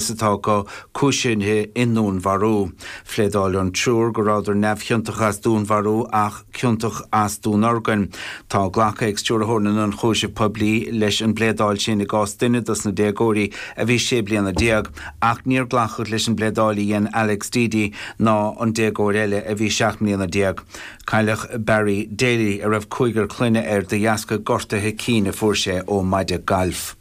is atá acu cúisithe i ndúnmharú. Phléadáil an triúr go rabhadar neamhchiontach as dúnmharú ach ciontach as dúnorgain. Tá glactha ag Stiúrthóir na nIonchúiseamh Poiblí leis an bpléadáil sin i gcás duine dos na déagóirí a bhí sé mbliana déag ach níor glacadh leis an bpléadáil a dhein Alex Deady ná an déagóir eile a bhí seacht mbliana déag. Cailleadh Barry Daly, a raibh cúigear clainne air, de dheasca gortuithe cinn a fuair sé ó mhaide galf.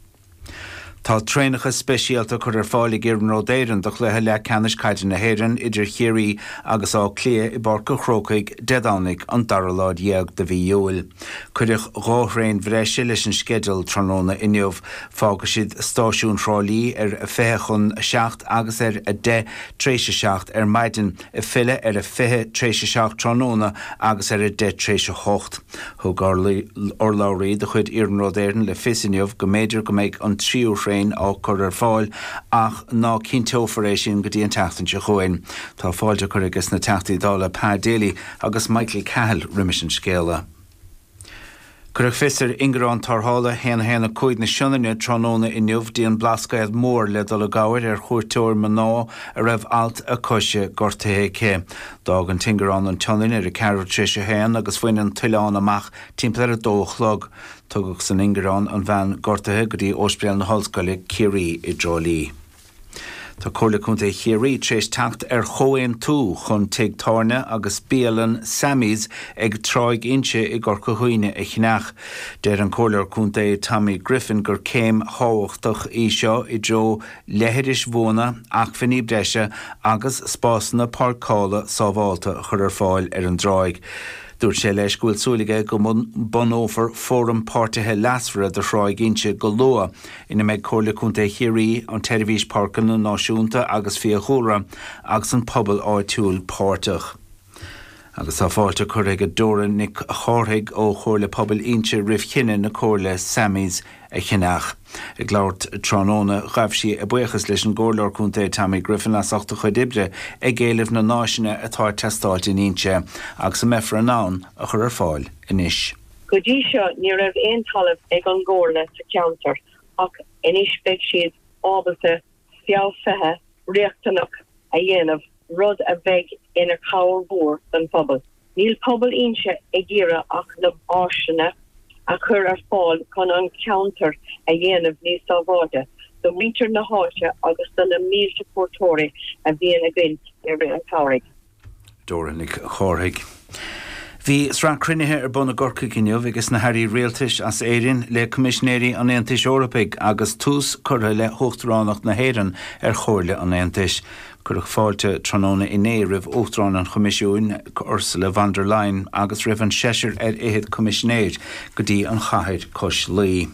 Tá traenacha speisialta curtha ar fáil ag Iarnród Éireann do chluiche leathcheannais Caide na hÉireann idir Chiarraí agus Áth Cliath i bPáirc an Chrócaigh Dé Domhnaigh an dara lá dhéag de mhí Iúil. Cuireadh dhá thraein bhreise leis an sceideal tráthnóna inniu. Fágfaidh siad Stáisiún Thrá Lí ar a fiche chun a seacht agus ar a deich tar éis a seacht ar maidin. ag filleadh ar a fiche tar éis a seacht tráthnóna agus ar a deich tar éis a hocht. Thug urlabhraí de chuid Iarnród Éireann le fios inniu go mb'fhéidir go mbeidh an tríú thraein á cur ar fáil ach ná cinnteofar é sin go dtí an tseachtain seo chugainn. Tá fáilte curtha aiges na Teachtaí Dála Pa Daly agus Michael Cahill roimis an scéala. Cuireadh fios ar ingearán tarrthála 1 1 5 na Sionainne tráthnóna inniu go dtí an Blascaod Mór le dul i gcabhair ar chuairteoir mná a raibh alt a coise gortaithe aici. D'fhág an t-ingearán an tSionainn ar a ceathrú tréis a haon agus bhain an t-oileán amach timpeall ar a dó a chlog. Tugadh san ingearán an bhean gortaithe go dtí Ospidéal na hOllscoile, Ciarraí i dTrá Lí. Tá Comhairle Contae Chiarraí tar éis teacht ar chomhaontú chun tigh tábhairne agus bialann Sammy's ag Tráigh Inse i gCorca Dhuibhne a cheannach. Deir an Comhairleoir Contae Tommy Griffin gur céim thábhachtach í seo i dtreo leithris bhuana, acmhainní breise agus spásanna páirceála sábhálta a chur ar fáil ar an dtráigh. Dúirt sé leis go bhfuil súil aige go mbunófar fóram páirtithe leasmhara do Thráigh Inse go luath. ina mbeidh Comhairle Contae Chiarraí, an tSeirbhís Páirceanna Náisiúnta agus Fiadhúlra agus an pobal áitiúil páirteach. Agus tá fáilte curtha ag Dora Nic Chárthaigh ó Chomhairle Pobail Inse roimh chinneadh na Comhairle Sammy's a cheannach. Ag labhairt tráthnóna, ghabh sí a buíochas leis an gComhairleoir Contae Tommy Griffin as ucht a chuid oibre ag éileamh na n-áiseanna atá ag teastáilt in Inse agus a mbeifear in ann a chur ar fáil anois. Go dtí seo ní raibh aon talamh ag an gComhairle sa cheantar ach anois beidh siad ábalta feabhsuithe riachtanach a dhéanamh rud a bheidh ina chabhair mhór don phobal. Níl pobal Inse ag iarraidh ach na háiseanna a chur ar fáil chun an ceantar a dhéanamh níos sábháilte do mhuintir na háite agus do na mílte cuairteoirí a bhíonn againn i rith an tsamhraidh. Dóra Nic Chárthaigh. Bhí sraith cruinnithe ar bun i gCorcaigh inniu ages na hAirí Rialtais as Éirinn le Coimisinéirí an Aontais Eorpaigh agus tús curtha le hUachtaránacht na hÉireann ar Chomhairle an Aontais. Cuireadh fáilte tráthnóna inné roimh Uachtarán an Choimisiúin, Ursula von der Leyen, agus roimh an seisear ar fhichead Coimisinéir go dtí an chathair cois Laoi.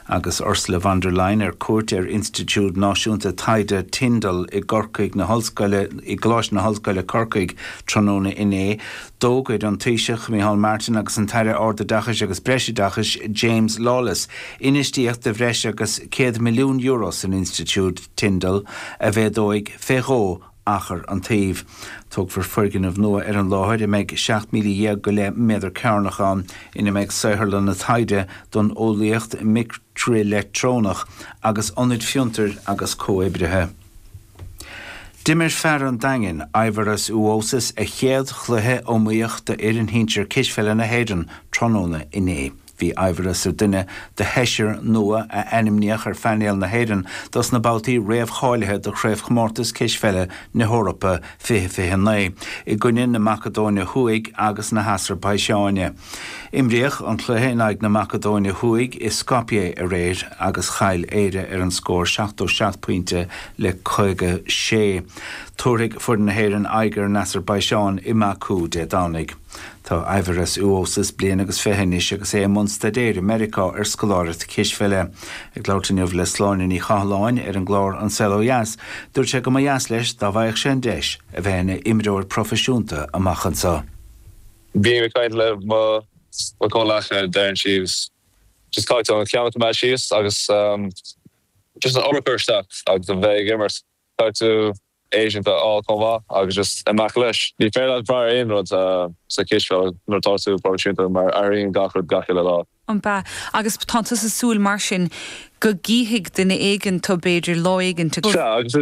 Agus Ursula von der Leyen ar cuairt ar Institiúid Náisiúnta Taighde Tyndall i gCorcaigh i gColáiste na hOllscoile Corcaigh tráthnóna inné, d'fhógair an Taoiseach Micheál Martin agus an tAire Ardoideachais agus Breisoideachais James Lawless infheistíocht de bhreis agus €100 milliún san Institiúid Tyndall a mhéadóidh fé dhó achar an tsuímh. Tógfar foirgneamh nua ar an láthair a mbeidh 17,000 go leith méadar cearnach ann, ina mbeidh saotharlanna taighde don eolaíocht micrileictreonach agus ionaid fiontair agus comhoibrithe. D'imir fear an Daingin, Aivaras Uosis, a chéad chluiche iomaíoch d'fhoireann shinsir cispheile na hÉireann tráthnóna inné. Bhí Aivaras ar dhuine de sheisear nua a ainmníodh ar phainéal na hÉireann dos na babhtaí réamhcháilithe do Chraobhchomórtas Cispheile na hEorpa 2029 i gcoinne na Macadóine Thuaidh agus na hAsarbaiseáine. Imríodh an cluiche in aghaidh na Macadóine Thuaidh i Skopje aréir agus chaill Éire ar an scór seachtó seacht pointe le caoga sé. Tabharfaidh foireann na hÉireann aghaidh ar an Asarbaiseáin i mBaku Dé Domhnaigh. Tá Aivaras Uosis bliain agus fiche anois agus é i mbun staidéir i Meiriceá ar scoláireacht cispheile. Ag labhairt inniu le Sláine Ní Chathalláin ar an gclár An Saol Ó Dheas, dúirt sé go mba dheas leis dá bhfaigheadh sé an deis a bheith ina imreoir proifisiúnta amach anseo. Bím ag caint le mo chomhleacaithe deireann siad just caithfidh tú an ceann a choimeád síos agus just an obair a chur isteach agus a bheith ag imirt. Caithfidh tú. agent a fháil chomh maith agus just amach leis. Ní féidir leat brath ar aon rud sa chispheil nuair atá tú proifisiúnta mar athraíonn gach rud gach uile lá. An b'ea. Agus tánn tusa ag súil mar sin go gcífidh duine éigint tu b'fhéidir lá éigint. Sea, agus is.